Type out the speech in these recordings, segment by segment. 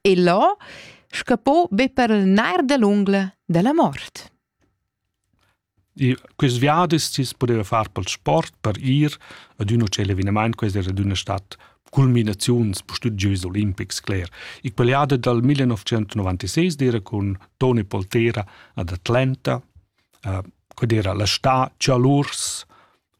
e là scappò be per il nair da l'ungla della mort. E quest viadi sis poteva far pel sport per ir ad un hotel evenement, questa era d'una stat culminaziuns bestud Jeux Olimpics, cler. Il paliada dal 1996 era con Tony Poltera ad Atlanta, uh, qued era la sta Cialurs,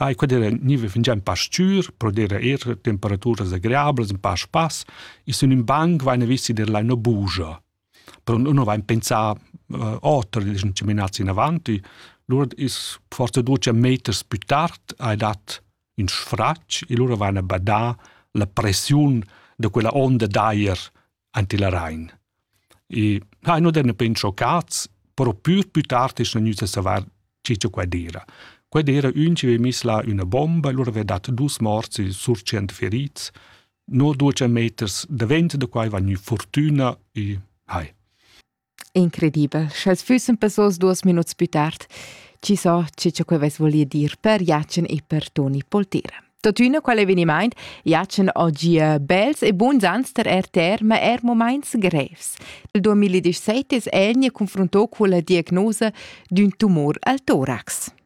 Ai quadera niva fingian pastur, prodera er temperaturas agreablas in pass pass, e sun in banc vaina visti der laina bugia. Però nun vain pensà uh, oter dischan chaminats in avanti, lura is forse duce meters più tard hai dat in sfratg e lura vaina badà la pressiun da quella onda d'aer anti la Rain. E ha no den ben schoccats, però pür pü tard es gnüt a savar chi cha quai d'eira. Quai d'eira ün chi ve miss là üna bomba e lura ve dat dus morts e sur tschient ferits. No duos meters davent da quai va gnü furtüna e hai. Incredibel, sch'els füssen passos duos minuts pü tard, chi so che cha quel vess voli dir per Jacen e per Toni Poltera. Totüna qual evenimaint Jacen oggi bels e buns ans ter RTR, ma er moments grevs. Il 2017 es el ne confronto con la diagnosa d'ün tumor al torax.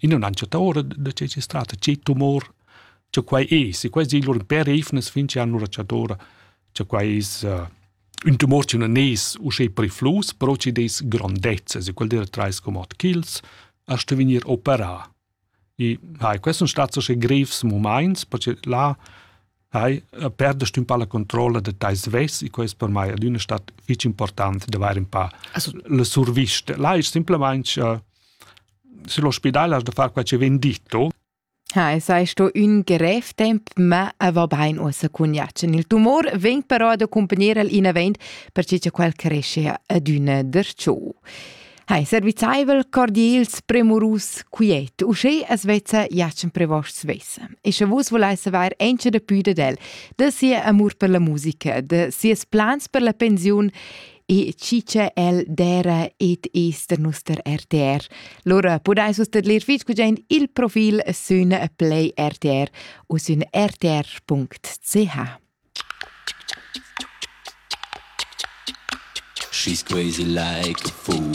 I non han chattà ora da che es strata, che tumor, cha quai es. E quai es lur per eivnas fin che han ora chattà cha quai es uh, ün tumor chi non es uschè periflus, però chi des grondezzas. E quel dera trais comod ch'ils a sto vegnir operà. E hai, questi sono stati uschè grevs moments, perché là Hai perdest un po la controlla de tais ves e quest per mai adüna stat fich important de vair un pa also, le surviste. Là è simplemente uh, se l'ospedale has de far quel che ven ditto. Ha, sei sto ün grev temp, ma va bain uossa cun Jacen. Il tumor veng però ad accompagner il in avent, perché che quel cresce adüna der ciò. Hai servizaivel cordials premurus quiet, uschè as vezza jatschen prevost svessa. E sche vus volais saver encha da pü dad el, da sia amur per la musica, da sias plans per la pensiun e chi che el dera et es der nuster RTR. Lora podais vus tedlir fitg gudain il profil sün Play RTR u sün rtr.ch. She's crazy like a fool.